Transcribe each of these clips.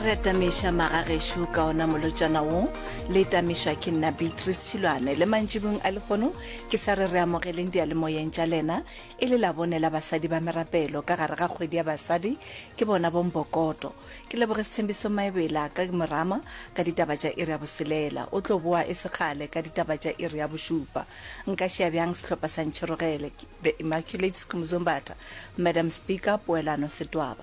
re atamiša magagešo ka ona molotšana wo le tamišwa ke nna beatrice tšhilwane le mantšibong a lehono ke sa re re amogeleng dialemoyeng tša lena e le labone la basadi ba merapelo ka gare ga kgwedi ya basadi ke bona bombokoto ke leboge sethembiso maebela ka morama ka ditaba tša iri ya boselela o tlo boa e sekgale ka ditaba tša iri ya bošupa nka šea bjang sehlopha sa ntšherogele the immaculate skumuzombatha madam speaker poelano setwaba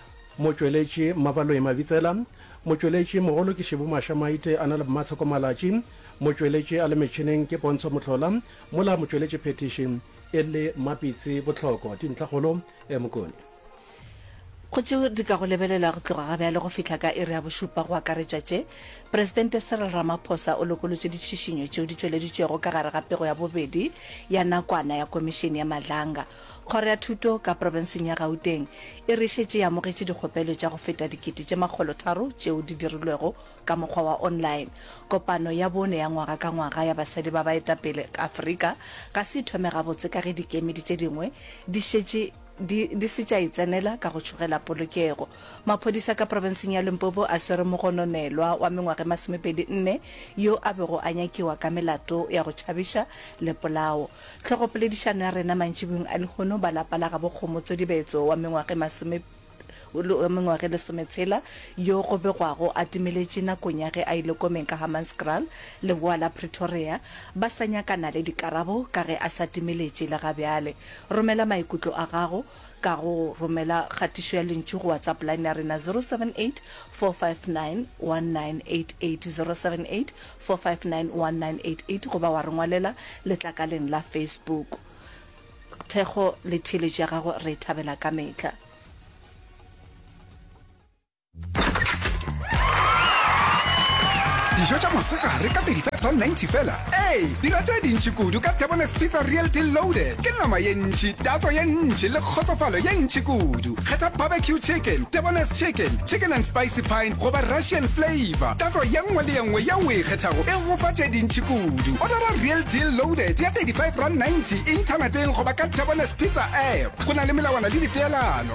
Motšweletši Mmabaloi Mabitsela, Motšweletši mogolo ke Shibu Masha Maite a na le Mmatsheko Malatši, Motšweletši a le metšhineng ke Pontsho Mohlola, mola Motšweletši Phethiši e le Mapitsi Botlhoko. Dintlhakgolo, Mokone. Go tšeo di ka go lebelelwa go tloga ga bjale go fihla ka iri ya bošupa go akaretšwa tše Presidente Cyril Ramaphosa o lokolotše ditšhišinyo tšeo di tšweleditšwego ka gare ga pego ya bobedi ya nakwana ya Komišene ya Madlanga Kgoro ya Thuto ka Profenseng ya Gauteng e re e šetše e amogetše dikgopelo tša go feta dikete tše makgolo tharo tšeo di dirilwego ka mokgwa wa online. Kopano ya bone ya ngwaga ka ngwaga ya basadi ba baetapele Afrika ga se e thome gabotse ka ge dikemedi tše dingwe di šetše di di se tša e tsenela ka go tšhogela polokego. Maphodisa ka profenseng ya Limpopo a swere mogononelwa wa mengwaga e masomepedi nne yo a bego a nyakiwa ka melato ya go tšhabiša le polao. Hlogopoledišano ya rena mantšibuyong a lehono ba lapa la gabo Kgomo Tsodibetso wa mengwage masome wa mengwage lesometshela yo go begwago a timeletše nakong ya ge a ile komeng ka Hammanskraal, leboa la Pretoria, ba sa nyakana le dikarabo ka ge a sa timeletše le ga bjale. Romela maikutlo a gago. ka go romela kgatišo ya lentšu go WhatsApp line ya rena 078-459-1988, 078-459-1988 goba wa re ngwalela letlakaleng la Facebook. Thekgo le theeletšo ya gago re e thabela ka mehla. dijo tša mosegare ka 35.90 fela ee dira tše dintši kudu ka tebones pizza real deal loaded ke nama ye ntši tatso ye ntši le kgotsofalo ye ntši kudu kgetha barbecue chicken tebones chicken chicken and spicy pine goba russian flavor tatso ye nngwe le ye nngwe ye o e kgethago e gofa tše dintši kudu odara real deal loaded ya 35 rand 90 inthaneteng goba ka tebones pizza app go na le melawana le dipeelano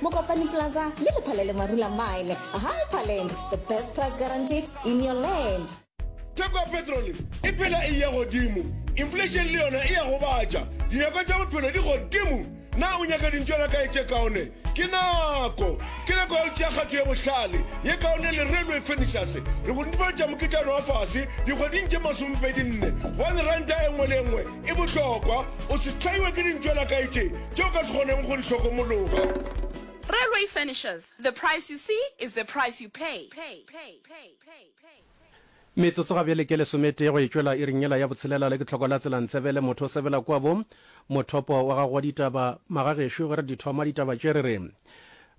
Mokopane Plaza le Lephalele Marula Mile. Hyperland, the best price guaranteed in your land. Theko ya petrole e phela e ya godimo, inflation le yona e a gobatša, dinyakwa tša bophelo di godimo. Na o nyaka dintšwana kae tše kaone? Ke nako! Ke nako ya go tšea kgato ye bohlale, ye kaone le Railway Furnitures. Re go netefaletša moketšana wa fase dikgweding tše masomepedi nne, gobane ranta e nngwe le e nngwe E bohlokwa o se hlaiwe ke dintšo la kae tše tše o ka se kgonego go di hlokomologa. Railway furnishers, the price you see is the price you pay. Metsotso ga bjale ke lesometee go e tšwela iring yela ya botshelela le ke tlhoko la tselantsebe le motho o sebela kua bo mothopo wa gago wa ditaba. Magagešo ge re di thoma ditaba tše re re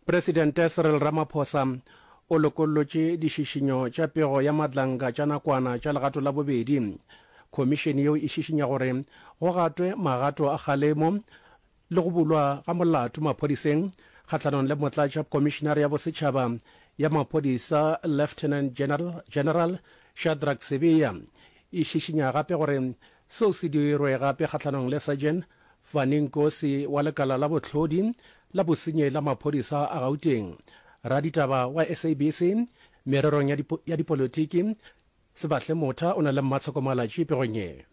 Presidente Cyril Ramaphosa o lokollotše dišišinyo tša pego ya madlanka tša nakwana tša legato la bobedi. Khomišene yeo e šišinya gore go gatwe magato a kgalemo le go bulwa ga molato maphodiseng kgahlanong le motlatša Khomišenare ya Bosetšhaba ya Maphodisa Lieutenant General, General Shadrack Sibiya. E šišinya gape gore seo se dirwe gape kgahlanong le Sergeant Fani Nkosi wa lekala la bohlodi la bosenyi la maphodisa a Gauteng, raditaba wa SABC mererong ya, dipo, ya dipolotiki Sebahle Motha o na le mmatshoko-malatši pegong ye.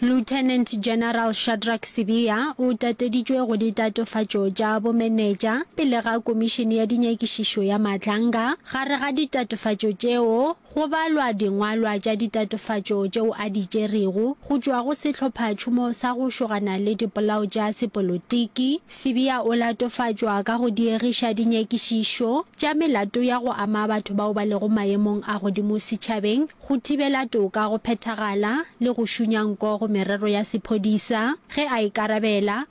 Lieutenant General Shadrack Sibiya o tateditšwe go ditatofatšo tša bomenetša pele ga Komišene ya Dinyakišišo ya Matlanga. Gare ga ditatofatšo tšeo Go balwa dingwalwa tša ditatofatšo tšeo a di tšerego go tšwa go sehlophatšhomo sa go šogana le dipolao tša sepolotiki. Sibiya o latofatšwa ka go diegiša dinyakišišo tša melato ya go ama batho bao ba lego maemong a godimo setšhabeng, go thibela toka go phethagala le go šunya nko go merero ya sephodisa ge a ikarabela.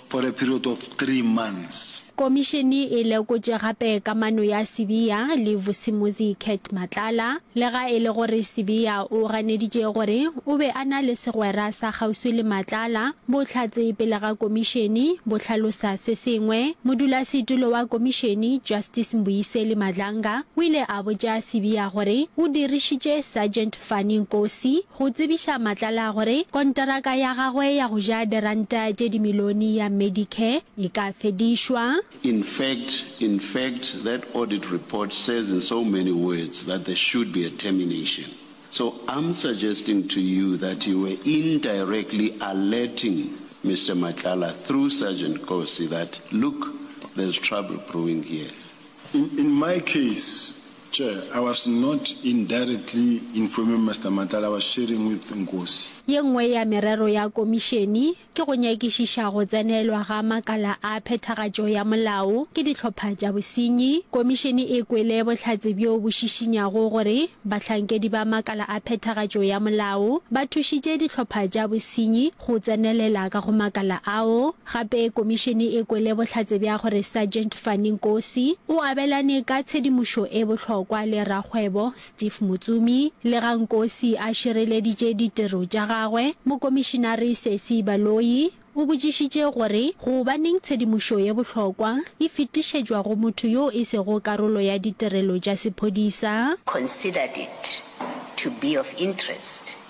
for a period of three months. Komišene e lekotše gape kamano ya Sibiya le Vusimuzi Cat Matlala. Lega e le gore Sibiya o ganeditše gore o be a na le segwera sa kgauswi le Matlala, bohlatse pele ga komišene bo hlalosa se sengwe. Modulasetulo wa komišene, Justice Mbuyiseli Madlanga, o ile a botša Sibiya gore o dirišitše Sergeant Fanny Nkosi, go tsebiša Matlala gore konteraka ya gagwe ya go ja diranta tše dimilione ya Medicare e ka fedišwa. In fact, in fact, that audit report says in so many words that there should be a termination. So I'm suggesting to you that you were indirectly alerting Mister Matlala through Sergeant Kosi that, look, there's trouble brewing here. In, in my case, Tjhe, I was not indirectly informing Mister Matlala, I was sharing with Nkosi. Ye nngwe ya merero ya Komišene ke go nyakišiša go tsenelwa ga makala a phethagatšo ya molao ke dihlopha tša bosenyi. Komišene e kwele bohlatse bjo bo šišinyago gore bahlankedi ba makala a phethagatšo ya molao ba thušitše dihlopha tša bosenyi go tsenelela ka go makala ao. Gape komišene e kwele bohlatse bja gore Sergeant Fanny Nkosi o abelane ka tshedimošo e bohlokwa le rakgwebo Steve Motsumi. Lega Nkosi a šireleditše ditiro tša gagwe, Mokomišenare Sesi Baloyi o botšišitše gore gobaneng tshedimošo ye bohlokwa e fetišetšwa go motho yo e sego karolo ya ditirelo tša sephodisa. considered it to be of interest.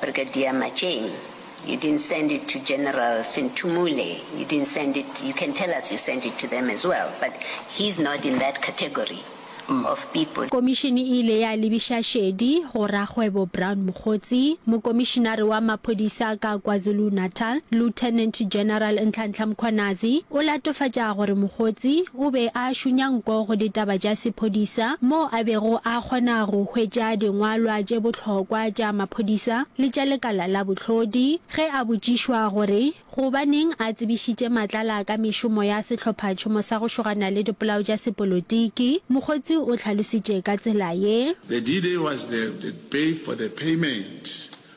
Brigadier Matšeng, you didn't send it to General Sinthumule, you didn't send it, you can tell us you sent it to them as well, but he's not in that category of people. Komišene e ile ya lebiša šedi go rakgwebo Brown Mokgotsi, Mokomišenare wa Maphodisa ka KwaZulu-Natal, Lieutenant General Nhlanhla Mkhwanazi, o latofatša gore Mokgotsi o be a šunya nko go ditaba tša sephodisa moo a bego a kgona go hwetša dingwalwa tše bohlokwa tša maphodisa le tša lekala la bohlodi. Ge a botšišwa gore gobaneng a tsebišitše Matlala ka mešomo ya sehlophatšhomo sa go šogana le dipolao tša sepolotiki, Mokgotsi o hlalositše ka tsela ye. The DD was the pay for the payment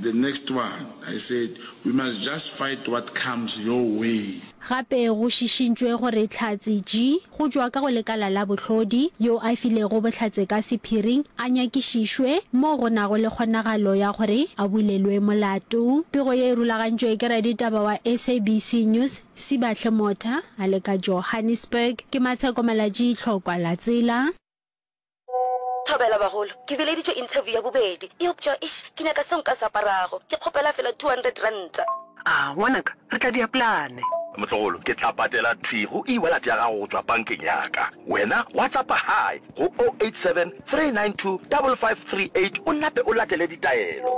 The next one, I said, we must just fight what comes your way. Gape go šišintšwe gore Tlhatse Ji, go tšwa ka go lekala la bohlodi, yo a filego bohlatse ka sephiring, a nyakišišwe mo go nago le kgonagalo ya gore a bulelwe molato. Pego ye e rulagantšwe ke raditaba wa SABC News, Sibahle Motha, a le ka Johannesburg. Ke Matsheko Malatji, Tlhokwa la Tsela. Thobela bagolo, ke bileditšwe interview ya bobedi, eupša eish ke nyaka seo nka se aparago, ke kgopela fela two hundred ranta. Aa ngwanaka, re tla dia plane. Motlogolo, ke tla patela thwi go e-wallet ya gago go tšwa bankeng ya ka. Wena WhatsAppa Hi go o eight seven three nine two double five three eight o nape o latele ditaelo.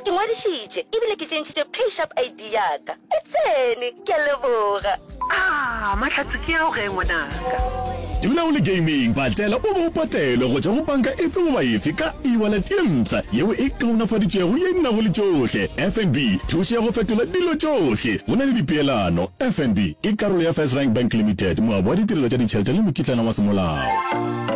Ke ngwadišitše ebile ke tšentšhitše PayShap ID ya ka. E tsene! Ke a leboga. Aah Mahlatse ke ao ge ngwanaka. Dula o le gaming, patlela o bo o patelwe go tšwa go panka efe goba efe ka e-wallet ye mpsha yeo e kaonafaditšwego ye e nago le tšohle. FNB, thušo ya go fetola dilo tšohle go na le dipeelano. FNB ke karolo ya FirstRand Bank Limited, moabi wa ditirelo tša ditšhelete le mokitlana wa semolao.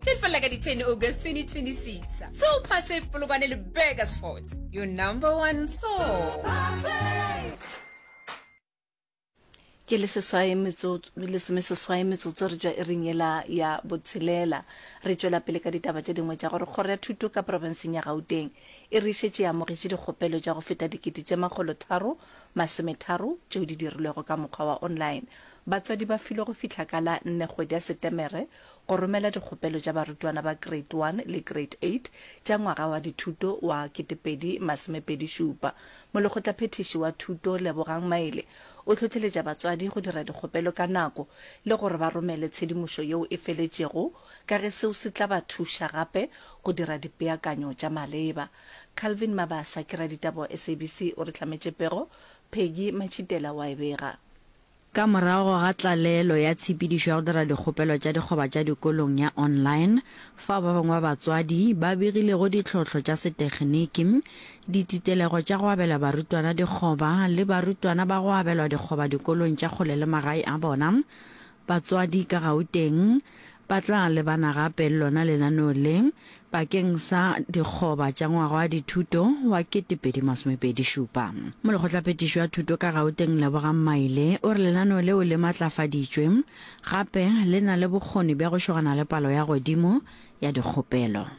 Tefela ka di 10 August 2026. Super Safe Polokwane le Burgers Fort. Your number one store. ke le seswae metsotso lesome seswae metsotso re tšwa e reng ela ya botshelela re tšwela pele ka ditaba tše dingwe tša gore kgoro ya thuto ka profenseng ya gauteng e re šetše ya amogetše dikgopelo tša go feta dikete tše makgolo tharo masometharo tšeo di dirilwego ka mokgwa wa online batswadi ba filwe go fihla ka la nne kgwedi ya setemere Go romela dikgopelo tša barutwana ba Grade One le Grade Eight tša ngwaga wa dithuto wa ketepedi masomepedi šupa. Molekgotlaphethiši wa Thuto Lebogang Maele o hlohleletša batswadi go dira dikgopelo ka nako le gore ba romele tshedimošo yeo e feletšego ka ge seo se tla ba thuša gape go dira dipeakanyo tša maleba. Calvin Mabasa ke raditaba wa SABC o re hlametše pego, Peggy Machitela wa e bega. Ka morago ga tlalelo ya tshepedišo ya go dira dikgopelo tša dikgoba tša dikolong ya online, fao ba bangwe ba batswadi ba begilego ditlhohlo tša setekgeniki, dititelego tša go abela barutwana dikgoba le barutwana ba go abelwa dikgoba dikolong tša kgole le magae a bona, batswadi ka Gauteng Ba tla lebana gape le lona lenaneo le bakeng sa dikgoba tša ngwaga wa dithuto wa 2027. Molekgotlaphethiši wa Thuto ka Gauteng Lebogang Maile o re lenaneo leo le matlafaditšwe gape le na le bokgoni bja go šogana le palo ya godimo ya dikgopelo.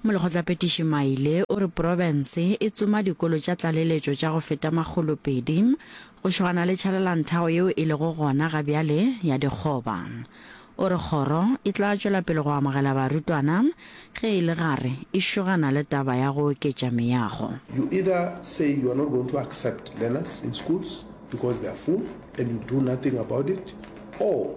Molekgotlapetiši Maile o re profense e tsoma dikolo tša tlaleletšo tša go feta makgolo pedi go šogana le tšhalelanthao yeo e lego gona ga bjale ya dikgoba. O re kgoro e tla tšwela pele go amogela barutwana ge e le gare e šogana le taba ya go oketša meago. You either say you are not going to accept learners in schools because they are full and you do nothing about it or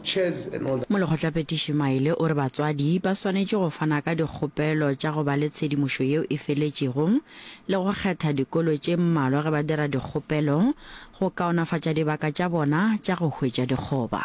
Molekgotlapetiši Maile o re batswadi ba swanetše go fana ka dikgopelo tša go ba le tshedimošo yeo e feletšego le go kgetha dikolo tše mmalwa ge ba dira dikgopelo go kaonafatša dibaka tša bona tša go hwetša dikgoba.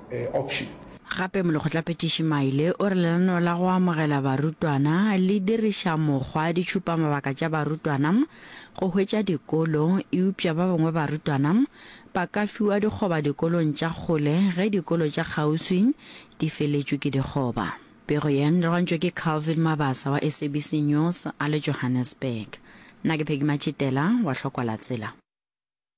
option. Gape Molekgotlaphethiši Maile o re lenaneo la go amogela barutwana le diriša mokgwa ditšhupamabaka tša barutwana go hwetša dikolo eupša ba bangwe barutwana ba ka fiwa dikgoba dikolong tša kgole ge dikolo tša kgauswi di feletšwe ke dikgoba. Pego ye e rwantšwe ke Calvin Mabasa wa SABC News a le Johannesburg. Nna ke Peggy Matšitela wa Hlokwalatsela.